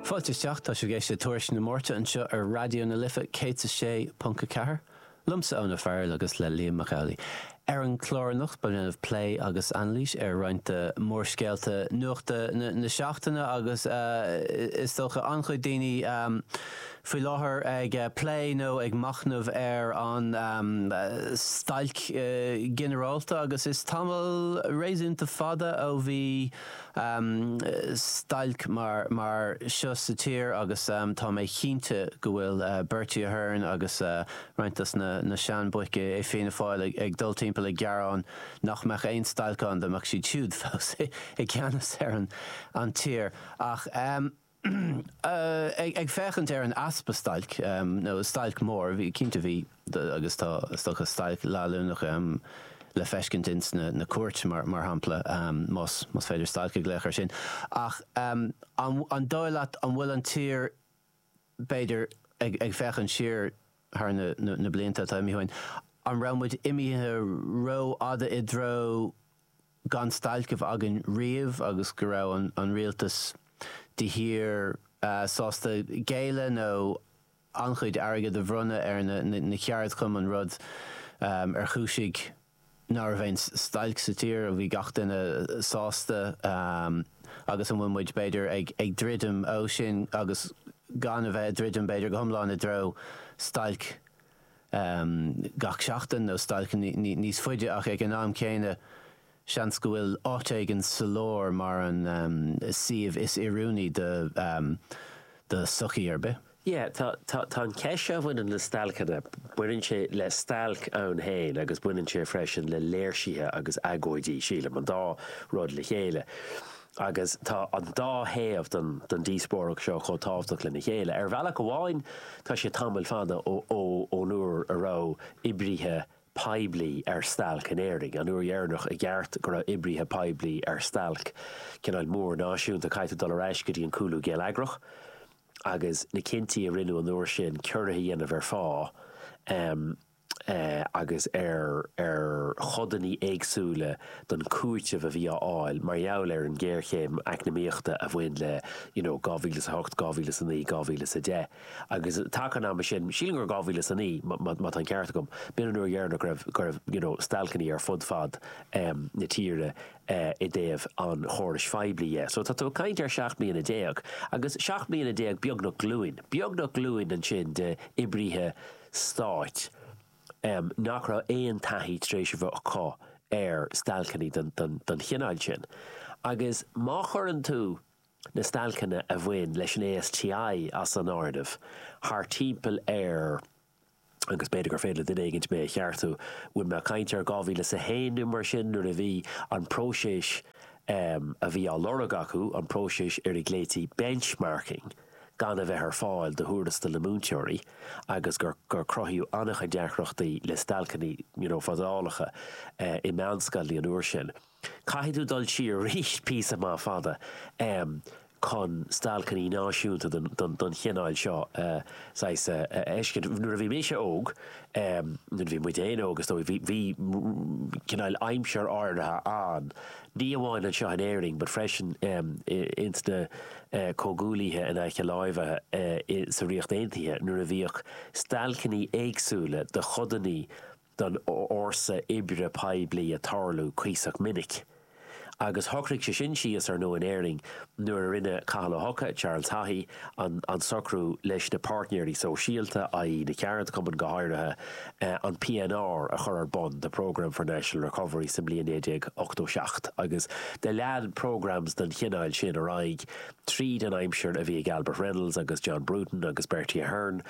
Fáilte isteach, tá sibh ag éisteacht le Tuairisc na Máirte anseo ar Raidió na Life 106.4, liomsa Eoin Ó Fearghail agus le Liam Mac Amhlaigh. Ar an chlár anocht beidh mé ag déanamh plé agus anailís ar roinnt de mhórscéalta nuachta na seachtaine agus is dócha an-chuid daoine faoi láthair ag plé nó ag machnamh ar an stailc ginearálta agus is tamall réasúnta fada ó bhí stailc mar mar seo sa tír agus tá mé cinnte go bhfuil Bertie Ahern agus roinnt dos na seanbhoic i Fianna Fáil ag dul timpeall ag gearán nach mbeadh aon stailc ann dá mbeadh siad siúd fós i gceannas ar an tír ach Ag féachaint ar an easpa stailc, nó stailc mhór, cinnte bhí, agus tá is dócha stailc leanúnach le feiscint ins na cúirt mar shampla, más féidir stailc a ghlaoch ar sin, ach an dóigh leat an bhfuil an tír b'fhéidir ag féachaint siar thar na blianta atá imithe uainn, an raibh muid imithe rófhada i dtreo gan stailc a bheith againn riamh agus go raibh an Rialtas de shíor sásta géilleadh nó an-chuid airgead a bhronnadh ar na ceardchumainn rud a chúisigh ná raibh aon stailc sa tír, a bhí gach duine sásta agus an bhfuil muid b'fhéidir ag druidim ó sin agus gan a bheith ag druidim b'fhéidir go hiomlán i dtreo stailc. gach seachtain nó stailc níos faide ach ag an am céanna seans go bhfuil áit éigin sa lár mar an suíomh is oiriúnaí de do sochaí ar bith. Yeah, tá tá an cheist seo a bhaineann le stailceanna, baineann sé le stailc ann féin agus baineann sé freisin le léirsithe agus agóidí, sílim, an dá rud le chéile. Agus tá an dá thaobh den díospóireacht seo chomh tábhachtach lena chéile. Ar bhealach amháin tá sé tamall fada ón uair a raibh oibrithe poiblí ar stailc in Éirinn. An uair dheireanach i gceart go raibh oibrithe poiblí ar stailc, cineál mór náisiúnta, caithfidh dul ar ais go dtí an cúlú geilleagrach agus na cinntí a rinneadh an uair sin, ciorruithe a dhéanamh ar phá, agus ar ar chodannaí éagsúla den chúiteamh a bhí á fháil mar gheall ar an ngéarchéim eacnamaíochta a bhain le you know 2008, 2009, 2010 agus taca an ama sin, sílim gur 2009 má má tá an ceart agam, b'in an uair dheireanach go raibh go raibh you know stailceannaí ar fud fad em na tíre eh i dtaobh an chórais phoiblí dhe. So tá tú ag caint ar sheacht mbliana déag agus seacht mbliana déag beagnach glúin, beagnach glúin ansin de oibrithe Stáit, nach raibh aon taithí tar éis a bheith acu ar stailceannaí don chineál sin. Agus má chuireann tú na stailceanna a bhain leis an ASTI as an áireamh, thart timpeall ar, agus b'fhéidir gur féidir le duine éigint mé a cheartú, bhfuil mé ag caint ar 2001 nó mar sin nuair a bhí an próiseas a bhí á lorg acu, an próiseas ar a nglaoití benchmarking. gan a bheith ar fáil do thuarastail na múinteoirí agus gur cruthaíodh an-chuid deacrachtaí le stailceannaí you know fadálacha i meánscoileanna an uair sin. Caithfidh tú dul siar aríst píosa maith fada em chun stailceannaí náisiúnta den den chineál seo a saghas a fheiscint. Nuair a bhí mise óg em nuair a bhí muid fhéin óg is dóigh bhí bhí cineál aimsir áirithe ann ní amháin anseo in Éirinn but freisin ins na Comhghuaillithe in aice láimhe sa Ríocht Aontaithe nuair a bhíodh stailceannaí éagsúla do chodannaí don fhórsa oibre poiblí a' tarlú cuíosach minic. Agus shocraigh sé sin síos, ar ndóigh, in Éirinn nuair a rinne Cathal Ó hEocha, Charles Haughey, an socrú leis na páirtnéirí sóisialta, i.e. na ceardchumainn, go háirithe an PNR, a chur ar bun, The Programme for National Recovery, sa mbliain 1987 agus do lean programmes don chineál sin ar aghaidh tríd an aimsir a bhí ag Albert Reynolds agus John Bruton agus Bertie Ahern.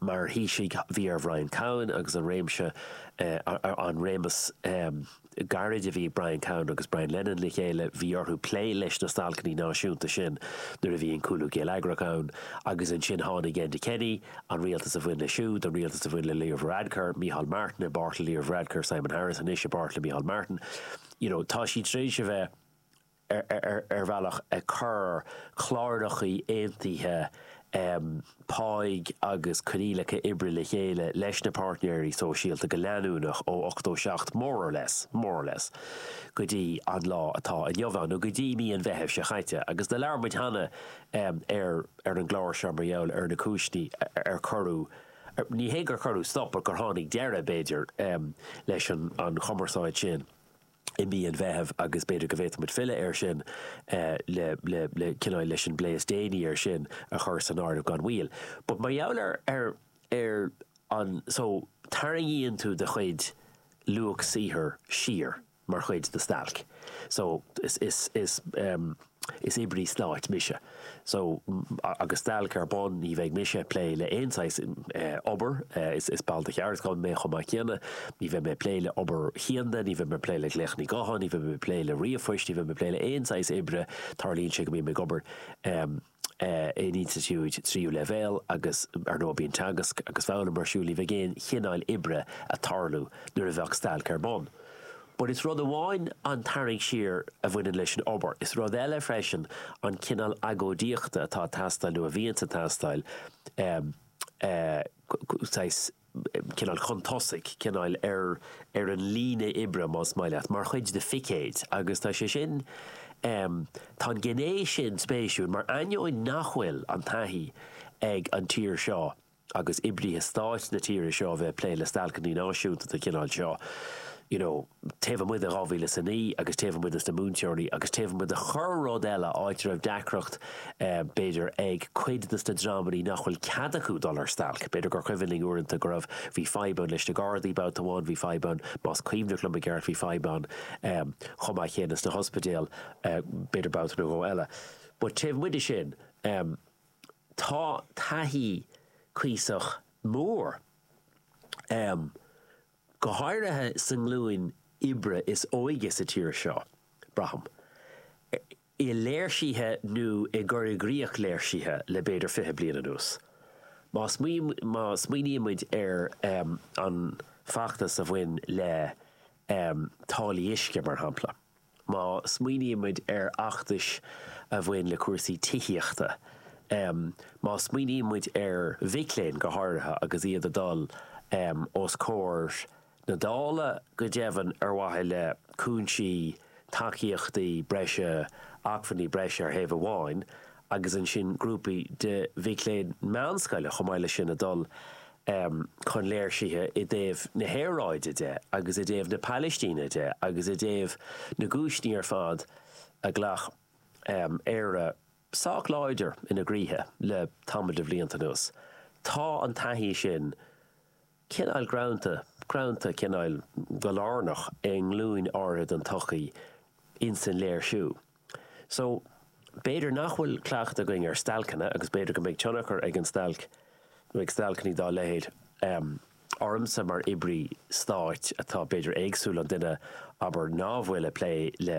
Mar Thaoisigh bhí ar Bhrian Cowen agus an réimse, an réimeas gairid a bhí ag Brian Cowen agus Brian Lenihan le chéile, bhí orthu plé leis na stailceannaí náisiúnta sin nuair a bhí an cúlú géilleagrach ann agus ansin tháinig Enda Kenny, an rialtas a bhain leis siúd, an rialtas a bhain le Leo Varadkar, Micheál Martin i bpáirt le Leo Varadkar, Simon Harris anois i bpáirt le Micheál Martin. You know, tá siad tar éis a bheith. ar bhealach ag cur cláireachaí aontaithe páighe agus coinníollacha oibre le chéile leis na páirtnéirí sóisialta go leanúnach ó ochtó seacht, more or less, more or less, go dtí an lá atá inniu ann, nó go dtí mí an Mheithimh seo chaite. Agus do labhair muid cheana ar an gclár seo mar gheall ar na cúinsí ar cuireadh, ní hé gur cuireadh stop, but gur tháinig deireadh, b'fhéidir, leis an chumarsáid sin. i mí an Mheithimh agus b'fhéidir go bhféadfadh muid filleadh air sin le cineál leis an bplé is déanaí air sin a chur san áireamh gan mhoill. But mar gheall ar ar ar an so tarraingíonn tú do chuid luach saothair siar mar chuid de stailc so is is is. Is oibrí stáit mise so agus stailc ar bun ní bheidh mise ag plé le aon saghas obair, is ball de cheardchumann mé chomh maith céanna, ní bheidh mé ag plé le hobair chianda, ní bheidh mé ag plé le glaochanna gutháin, ní bheidh mé ag plé le ríomhphoist, ní bheidh mé ag plé le aon saghas oibre, tarlaíonn sé go mbím ag obair in institiúid tríú leibhéal agus ar ndóigh bíonn teagasc agus foghlaim ar siúl, ní bheidh aon chineáil oibre ag tarlú nuair a bheadh stailc ar bun. But is rud amháin an tarraingt siar a bhaineann leis an obair, is rud eile freisin an cineál agóidíochta atá ag teastáil nó a bhíonns ag teastáil, saghas, cineál chun tosaigh, cineál ar ar an líne oibre más maith leat, mar chuid de phicéid agus tá sé sin, tá an gné sin spéisiúil mar ainneoin nach bhfuil an taithí ag an tír seo agus oibrithe stáit na tíre seo a bheith ag plé le stailceanna náisiúnta den chineál seo, you know, taobh amuigh de 2000 is a naoi agus taobh amuigh dos na múinteoirí agus taobh amuigh de chorr-rud eile, áit a raibh deacracht b'fhéidir ag cuid dos na dreamannaí nach bhfuil cead acu dul ar stailc. B'fhéidir gur chuimhin linn uaireanta go raibh, bhí fadhb ann leis na Gardaí babhta amháin, bhí fadhb ann, más cuimhneach liom i gceart, bhí fadhb ann chomh maith céanna sna hospidéil b'fhéidir babhta nó dhó eile. But taobh amuigh de sin, Tá taithí cuíosach mór a'm, go háirithe sa nglúin oibre is óige sa tír seo, braithim, i léirsithe nó i gcur i gcrích léirsithe le b'fhéidir fiche bliain anuas. Má smaoinímid ar an feachtas a bhain le táillí uisce, mar shampla. Má smaoinímid ar fheachtais a bhain le cúrsaí tithíochta, má smaoiníonn muid ar mhic léinn go háirithe agus iad ag dul os comhair na Dála, go deimhin ar mhaithe le cúinsí, tacaíochtaí breise, acmhainní breise ar thaobh amháin agus ansin grúpaí de mhic léinn meánscoile chomh maith leis sin ag dul um chun léirsithe i dtaobh na haeráide de agus i dtaobh na Pailistíne de agus i dtaobh na gcúiseanna ar fad a ghlac Éire sách láidir ina gcroíthe le tamall de bhlianta anuas. Tá an taithí sin cineál greanta, greanta cineál go lárnach i nglúin áirithe den tsochaí insan léirsiú. So, b'fhéidir nach bhfuil cleachtadh againn ar stailceanna agus b'fhéidir go mbeidh tionchar ag an stailc nó ag stailceannaí dá leithéid ormsa mar oibrí stáit atá b'fhéidir éagsúil ón duine abair ná bhfuil ag plé le